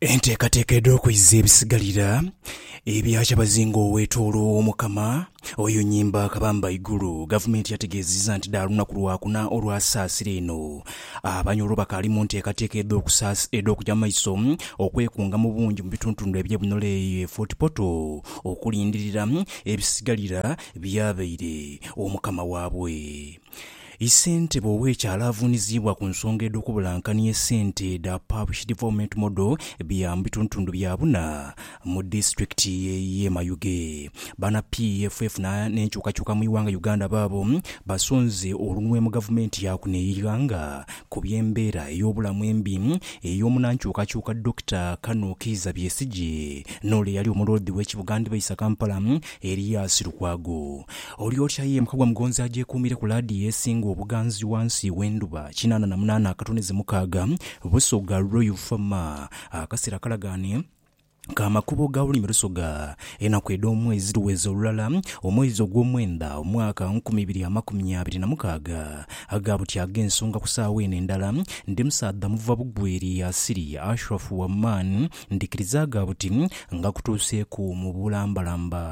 Enteekateeka edh'okwiza ebisigalira ebya kyabazinga owetoologho Omukama oyo Nyimba Kabamba Ghaigulu. Gavumenti yategeezezza nti dha lunaku Lwakuna olwa saasira eno, Abanyoro bakaali mu nteekateeka edh'okugya mu maiso okwekunga mu bungi mu bituntundu ebye Bunola eyo e Fort Portal okulindirira ebisigalira byabaire Omukama waabwe. I Sentebe ow'ekyalo avuuniziibwa ku nsonga edh'okubulankania esente dha Parish Development Model bya mu bitundutundu bya buna mu Disitulikiti y'e Mayuge. Bana PFF n'enkyukakyuka mu ighanga Uganda baabo basonze olunwe mu Gavumenti ya kuno eighanga ku by'embeera ey'obulamu embi ey'omunankyukakyuka Dokita Kano Kiiza Byesigye n'ole eyali Omuloodi w'e Kibuga Ndibaisa Kampala Elias Lukwago, Oli otya ye mukagwa mugonzi agyekuumire ku laadiyo esinga obuganzi wansi w'endhuba, kinaana na munaana akatoneze mukaaga, Busoga Royal Farmer, akasera akalagaane ka makubo ga bulimi Lusoga, enaku edh'omwezi dhiweze olulala, omwezi ogw'omwenda, omwaka nkumi ibiri amakumi abiri na mukaaga, Aga buti ag'ensonga ku saawa eno endala, ndi musaadha muva bugweri asiri, Ashraf Waman, Ndhikirizaaga buti nga kutuuseeku mu bulambalamba.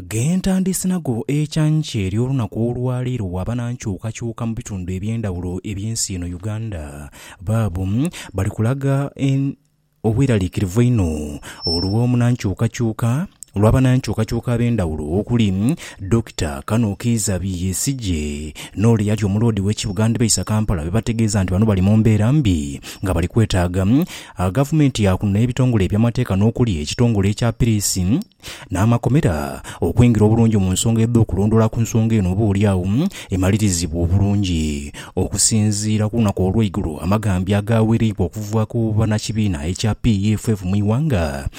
Ghe ntandiise nagho ekyancha ery'olunaku olwa leero bwaba nankyukakyuka mu bitundu eby'endhawulo eby'ensi eno Uganda, baabo bali kulaga obweraliikirivu einho olw'omunankyukakyuka olwa banankyukakyuka ab'endhawulo okuli, Dokita Kano Kiiza Besigye n'ole eyali omuloodi w'e kibuga ndhibaisa Kampala be bategeeza nti bano bali mu mbeera mbi nga bali kwetaaga Gavumenti ya kuno n'ebitongole eby'amateeka n'okuli ekitongole ekya Piriisi n'amakomera okwingira obulungi mu nsonga edh'okulondoola ku nsonga eno oba oli agho emalirizibwe obulungi. Okusinziira ku lunaku olw'eigulo amaghambi agaawereibwa okuva ku bannakibiina ekya PEFF mu ighanga,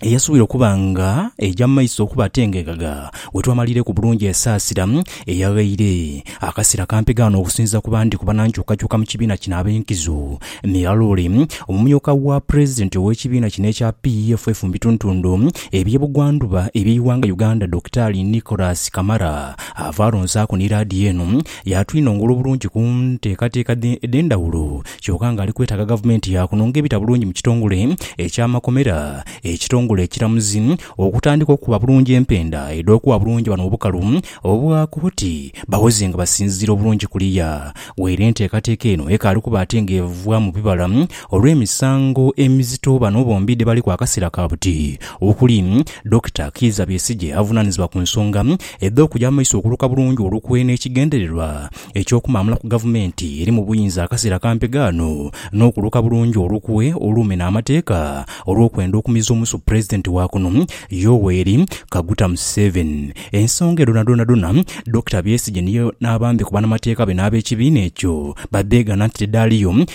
eyasuubira okuba nga eja mu maiso okuba ate nga eghaga we twamalireku bulungi esaasira eyaghaire akaseera kampi ghano okusinziira ku bandi ku banankyukakyuka mu kibiina kino ab'enkizo miraloole. Omumyuka wa Pulezidenti ow'ekibiina kino ekya PEFF mu bituntundu eby'e Bugwandhuba eby'eighanga Uganda, Dokitaali Nicholas Kamara ava alonsaku ni laadiyo eno Yaatwinongola obulungi ku nteekateeka edh'endhawulo kyoka ng'ali kwetaaga gavumenti ya kuno ng'ebita bulungi mu kitongole eky'amakomera, ekitongole ekiramuzi okutandika okukuba bulungi empenda edh'okuwa bulungi bano obukalu obwa kooti bawoze nga basinziira obulungi kuliya weere enteekateeka eno ekaali kuba ate ng'evaamu bibala olw'emisango emizito bano bombi dhebaliku akaseera ka buti okuli Dokita Kiiza Besigye avunaanizibwa ku nsonga Edha okuja mu maiso okuluka bulungi olukwe n'ekigendererwa eky'okumaamula ku gavumenti eri mu buyinza akaseera kampi ghano n'okuluka bulungi olukwe olumena amateeka olw'okwenda okumiza omusu Pulezidenti wa kuno Yoweri Kaguta Museveni. Ensonga edho dhonadhona Dokita Besigye n'abambe ku banamateeka be n'ab'ekibiina ekyo badheegana nti dhidhaaliyo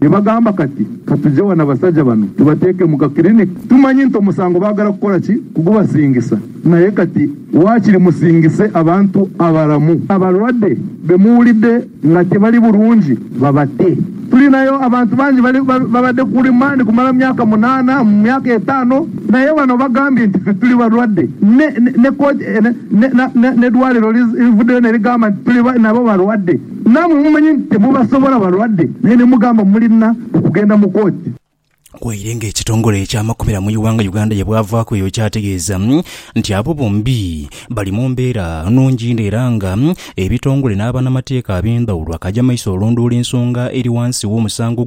Ni bagamba kati, Ka tuje ghano abasaja bano tubateeke mu ka clinic. Tumanyi nti omusango baagala kukola ki? Kugubasingisa. Naye kati waakiri musingise abantu abalamu. Abalwadde be muwulidde nga tibali bulungi babate. Tulinayo abantu bangi bali babadde ku remand kumala myaka munaana, myaka etaano, naye bano bagambye nti ffe tuli balwadde. Ne, ne, ne kooti, ne, ne, ne, n'eddwaaliro livuddeyo ne ligamba nti tuli nabo balwadde. Naamwe mumanye nti temubasobola balwadde naye ne mugamba mulina okugenda mu kooti. Waire nga ekitongole eky'amakomera mu iwanga Uganda ye bwavaaku eyo kyategeeza nti abo bombi bali mu mbeera nungi inho era nga ebitongole n'abanamateeka abendhawulo akaja maiso olondoola ensonga eri wansi w'omusango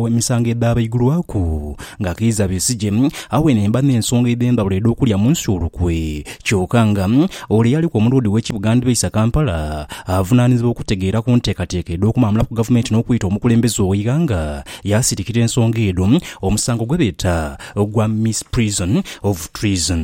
emisango edhaabaigulwaku nga Kiiza Besigye awenhe mba n'ensonga edhendhawulo edh'okulya munsi olukwe kyoka nga Ole eyaliku omuloodi w'ekibuga Ndbeisa Kampala avunaanizibwa okutegeera ku nteekateeka edh'okumaamula ku gavumenti n'okwita omukulembeze ow'eighanga yaasirikira ensonga edho omusango gwe beeta ogwa Misprision of Treason.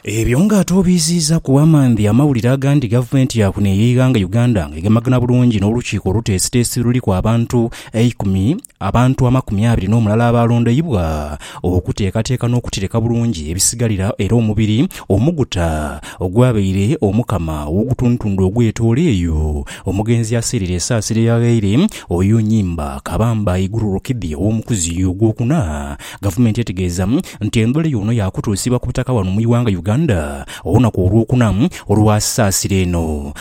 Ebyo nga ate obiiziizaku amandhi amawulire agandi gavumenti ya kuno ey'eighanga Uganda nga egemagana bulungi n'olukiiko oluteesiteesi oluliku abantu eikumi Abantu amakumi abiri n'omulala abaalondeibwa okuteekateeka n'okutereka bulungi ebisigalira era omubiri omuguta ogwabaire omukama ow'ogutundutundu ogw'etoolo eyo omugenzi yaaseerera esaasiro eyaghaire oyo Nyimba Kabamba Iguru Rukidhi ow'omukuzi ogwokuna. Gavumenti etegeeza nti endhula eyo ono yaakutuusibwa ku butaka wano mu ighanga Uganda olunaku Olwokuna olwa saasiro eno.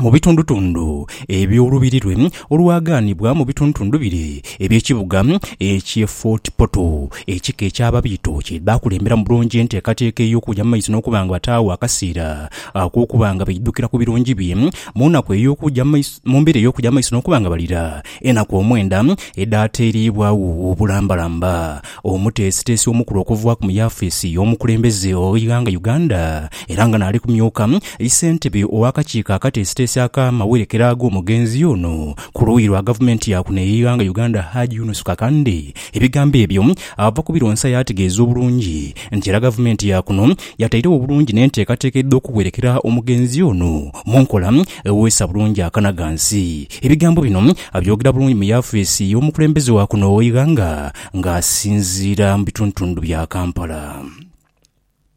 mu bitundutundu eby'olubiri lwe olwaghanibwa mu bitundutundu bire eby'ekibuga eky'e Fort Portal. Ekika eky'Ababiito kye baakulembera mu bulungi enteekateeka ey'okuja mu maiso n'okuba nga bataagho akaseera ak'okuba nga baidhukira ku birungi bye mu nnaku ey'okuja mu maiso mu mbeera ey'okuja mu maiso n'okuba nga balira enaku omwenda edhaateereibwagho obulambalamba. Omuteesiteesi omukulu okuva mu yafeesi y'omukulembeze ow'eighanga Uganda era nga naali kumyuka ssentebe ow'akakiiko akateesiteesi ak'amawerekera ag'omugenzi ono ku luuyi lwa gavumenti ya kuno ey'eighanga Uganda Hajj Yunus Kakande ebigambo ebyo ava kubironsa yaategeeza obulungi nti era gavumenti ya kuno yatairegho bulungi n'enteekateeka edh'okuwerekera omugenzi ono mu nkola eweesa bulungi akanagansi. Ebigambo bino abyogera bulungi mu yafeesi y'omukulembeze wa kuno ow'eighanga nga asinziira mu bitundutundu bya Kampala.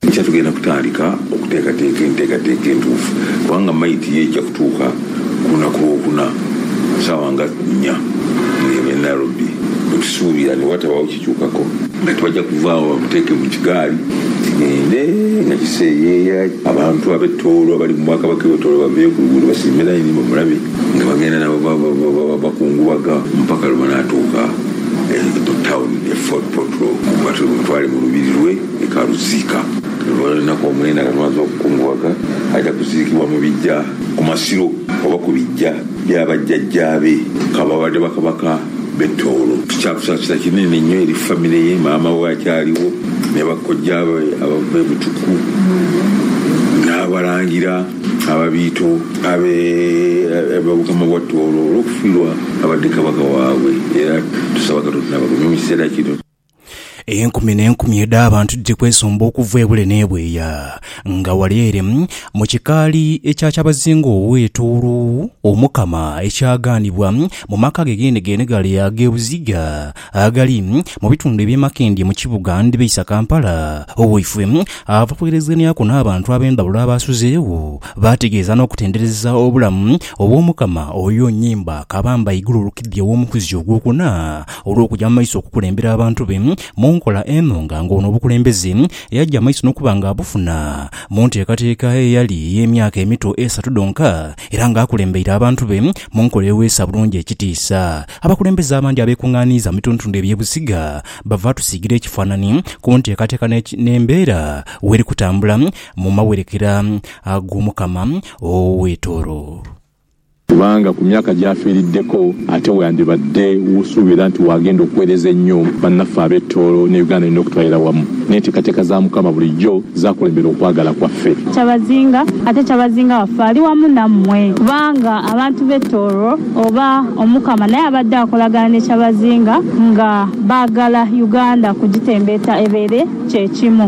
Enkya tugenda kutandika okuteekateeka enteekateeka entuufu kubanga mayiti ye eija kutuuka ku lunaku Lwokuna ku saawa nga nnya ng'eba e Nairobi bwe tusuubira ni bwatabaawo kikyukako. Kati baja kuva agho bamuteeke mu kigaali kigende nga kiseeyeeya abantu ab'e Tooro abali mu Bwakabaka e Tooro baveeyo ku luguudo basiime layini bamulabe nga bagenda nabo bakungubaga mpaka lwe banaatuuka Mu tawuni ye Fort Portal mwatwire omutwale mu lubiri lwe e Karuziika. Olunaku omwenda nga lumaze okukungughaga, aja kuziikibwa mu biggya ku masiro oba ku biggya bya bajjajjaabe kababadde bakabaka b'e Tooro. Kya kusaasira kinene nnyo eri famire ye, maama we akyaliwo ne bakojjaabe abava e Butuku n'abalangira. Ababiito abe Obukama bwa Tooro olw'okufiirwa abadde Kabaka waabwe era tusaba Katonda abagumye mu kiseera kino. Enkumi n'enkumi edh'abantu dhiri kwesomba okuva ebule n'ebweya nga ghale ere mu kikaali ekya Kyabazinga ow'e Tooro, Omukama ekyagaanibwa mu maka ge geenegeene ghale ag'e Buziga agali mu bitundu eby'emakindye mu kibuga ndhibeisa Kampala. Owaifwe ava kwerezeneaku n'abantu ab'endhawulo abaasuzeegho, baategeeza n'okutendereza obulamu obw'Omukama oyo Nyimba Kabamba Iguru Rukidhi ow'omukuzi ogwokuna olw'okuja mu maiso okukulembera abantu be mu nkola eno nga ng'ono obukulembeze yaja maiso n'okuba nga abufuna mu nteekateeka eyali ey'emyaka emito esatu dhonka era ng'akulembeire abantu be mu nkola eweesa bulungi ekitiisa Abakulembeze abandi abeekungaaniiza mu bitundutundu eby'e Busiga bava atusiigira ekifaanani ku nteekateeka n'embeera weeri kutambula mu mawerekera g'Omukama ow'e Tooro. Kubanga ku myaka gy'afiiriddeko ate wandibadde w'osuubira nti w'agenda okuweereza ennyo bannaffe ab'e Tooro ne Uganda yonna okutwalira wamu. N'enteekateeka za Mukama bulijjo zaakulembera okwagala kwaffe. Kyabazinga, ate Kyabazinga waffe ali wamu nammwe, kubanga abantu b'e Tooro. Oba Omukama naye abadde akolagana ne Kyabazinga nga baagala Uganda kugitembeeta ebeere kye kimu.